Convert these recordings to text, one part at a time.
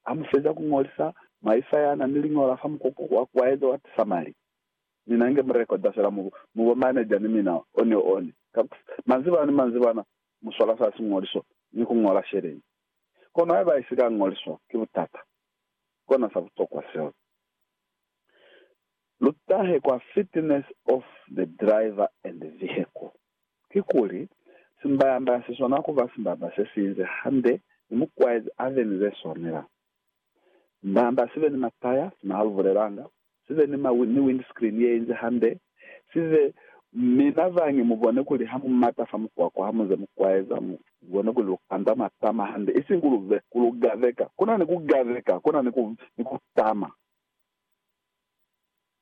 ha mu feza ku ñolisa maifa ya na ni liñola fa mukuku wa kuaezo wa tisamali, mi na nge mu rekoda fela mu bo maneja ni mina one one. Ka ku sa, manzibana ni manzibana mu swala sa siñoliso ni ku ñola sheleñi. Kono haiba i si ka ñoliswa, ki butata. Kona sa butokwa seo. Lu tahe kwa Fitness of the Driver and Vehicle. Kikuli, simbayanda si swana ku ba simbanda se si inze hande ni mukwaezi a be ni ze swanela. Simbayanda si be ni mataya, sina halubulelanga, si be ni, ni windscreen ye inze hande, si be, mi na zangi mu bone kuli ha mu mata fa mukwakwa ha mu ze mu kwaeza, mu bone kuli lu kanda matama hande, isiñi ku lu, ku lu gaveka. Ku na ni ku gaveka, ku na ni ku, ni ku tama.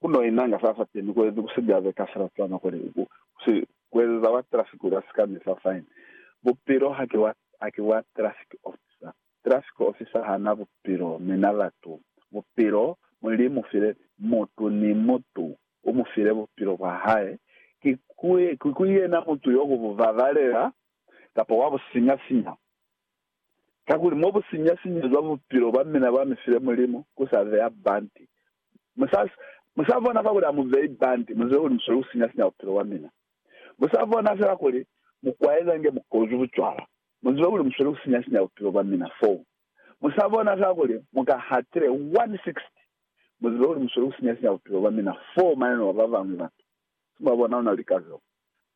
Ku no inanga sa sa temi kuezi ku si byaze ka sila cwana kuli ku si kuezeza wa traffic kuli a si ka misa fine. Bupilo ha ki wa, ha ki wa traffic officer. Traffic officer ha na bupilo mi na latu bupilo. Mulimu file mutu ni mutu u mu file bupilo bwa hae. Ki ku, ki ku yena mutu yo ku bu babalela kapa wa bu sinya sinya. Kakuli mo bu sinya sinyezwa bupilo bwa mina bwa mi file Mulimu, ku sa beya banti Musaba ona kakuli amubei banti muzwile kuli musweli kusinya-sinya bupilo bwa mina. Musaba ona fela kuli mukwaeza nge mukozu bucwala muzwile kuli musweli kusinya-sinya bupilo bwa mina. Foo. Musaba ona fela kuli muka hatile 160 muzwile kuli musweli kusinya-sinya bupilo bwa mina foo maneno a babañwi batu. Simu wabona ona lika zeo.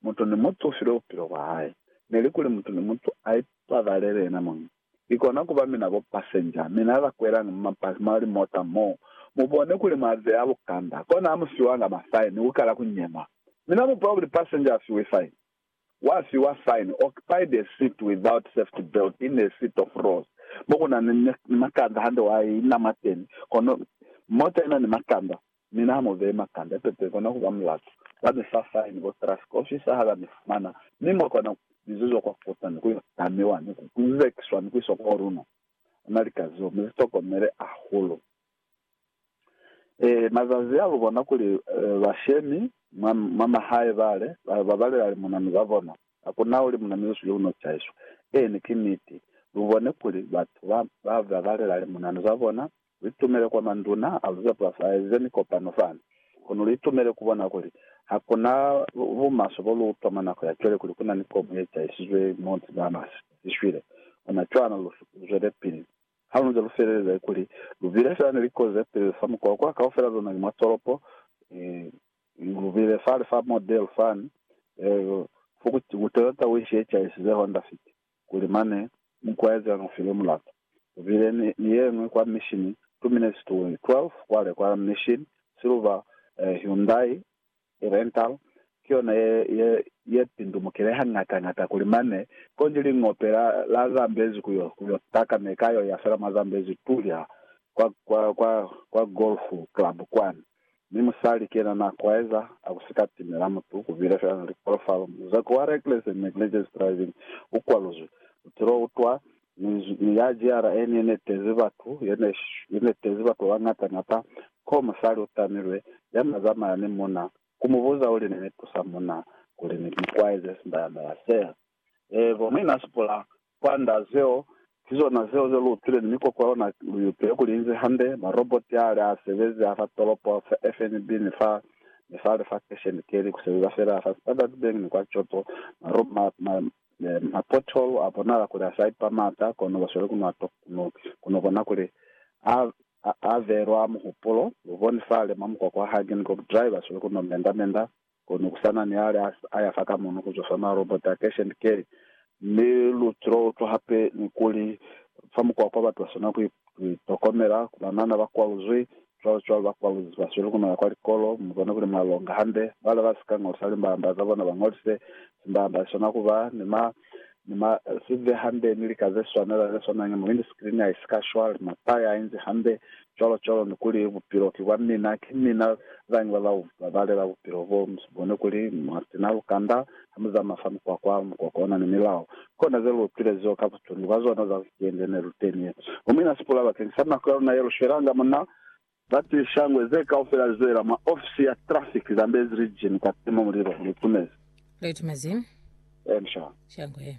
Mutu ni mutu u filwe bupilo bwa hae. Neli kuli mutu ni mutu a ipabalele yena muñi. Ikona kuba mina bo passenger, mina ba kwelañi mu mabasi, mwa limota mo. Mubone kuli mwa beya bukanda, kona amu fiwanga ma fine ni kukala ku nyema. Mina mu bwa kuli passenger a fiwe fine? Wa fiwa fine, occupied a seat without safety belt in a seat of rows, mo kuna ni makanda hande wa ina mwateni, kono mota ina ni makanda. Mi na mu bee makande a pepe kona kuba mulatu. Ba mi fa fine bo trust ka ofisa ha ba mi fumana, mi mwa kona ku bizezwa kwa kota ni ku yo tamiwa ni ku kuzekiswa ni ku iswa kwa luna. Ona lika zeo mi zi tokomele hahulu. Ee, mazazi a lu bona kuli bashemi mwa, mwa mahae bale, ba, ba balela limunanu za bona. Ha ku na ulimunanu yo sili u no chaiswa. Eeni, ki niti. Lu bone kuli batu ba, ba, ba balela limunanu za bona, Lu itumele kwa manduna a lu za pulasi a eze mikopano fani. Kono lu itumele ku bona kuli ha ku na bumaswe bo lu utwa mwa nako ya cwale kuli ku na ni komu ye cahisizwe mo Bahamas i shwile. Ona cwana lu zwelepili. Ha lu nze lu feleleza kuli lu bile fela ni likozi ze peli fa mukwa kwa kaufela luna ni mwa tolopo, lu bile fale fa Model fani, Ford Toyota Wish ye cahisize Honda Fit. kuli mane mukwaezi a nu file mulata. Ku bile ni, ni ye ñwi kwa mishini, two minutes to 12 kwale kwa mishini, silver eh, Hyundai i rental, ki yona ye, ye, ye pindumukile hañata ñata kuli mane, konji lingope la, la Zambezi ku yo, ku yo taka ne ka yo ya fela mwa Zambezi tuli ha, kwa, kwa, kwa, kwa golf club kwani. Mi musali kena na kwaeza a ku sika timela mutu kubile fela na likolofalo. Muzaku wa reckless and negligence driving u kwaluzwi. Butilo u twa Minzwi mi ya jiara eni ye ne tezi batu, ye ne ye ne tezi batu ba bañata ñata. Koo musali u tamilwe, ya na zamaya ni muna, ku mu buza uli, Ne ni tusa muna kuli ni mu kwaeze sindayamela sea? Ee, kono i na sipula Kwand'a zeo, ki zona zeo ze lu upile ni mikoko ya luna lu iupile kuli inzi hande, maroboti a li a sebezi a fa tolopo, fa FNB ni fa ni fa lifakesheni keli ku sebeza fela, fa Standard Bank ni kwa Choto, marobo ma, ma, ma pothole a bonala kuli a sa ipa m'ata, kono ba sweli ku no, ku no, ku no bona kuli a, a, a velwa muhupulo. Lu boni fale mwa mukoko wa Hagen Group Drive ba sweli ku no menda-menda. Kono ku sa na ni ale a ya fa ka mono ku zwa fa marobota a Cash and Carry, mi lu tila utwa hape ni kuli fa mukwakwa batu ba swanela ku itokomela, ku banana ba kwaluzwi, cwalo-cwalo, ba kwaluzi ba sweli ku no ya kwa likolo. Mu bone kuli mwa longa hande. Bale ba si ka ñolisa limbamba za bona ba ñolise. Simbamba si swanela ku ba ni ma Ni ma zive hambe ni lika ze swanela ze swana ni muhindi screen ya isi ka shwa, lima pa ya inzi hambe, cwalo cwalo, ni kuli, Bupilo ki bwa mina. Ki mina zañi ba ba babalela bupilo bo? Mu si bone kuli mwa sina lukanda ha mu zamaya fa mukwakwa? Mukwakwa una ni milao. Kona ze lu utwilezeo ka butundu bwa zona za wikende ne lu teni ye. Mu mina sipula bakeng sa nako ya luna ye lu shwelanga muna. Za ti shangwe ze kaufela lizwelela mwa ofisi ya traffic Zambezi Region kwa tima mulilo. Litumezi. Litumezi. Ensha. Shangwe.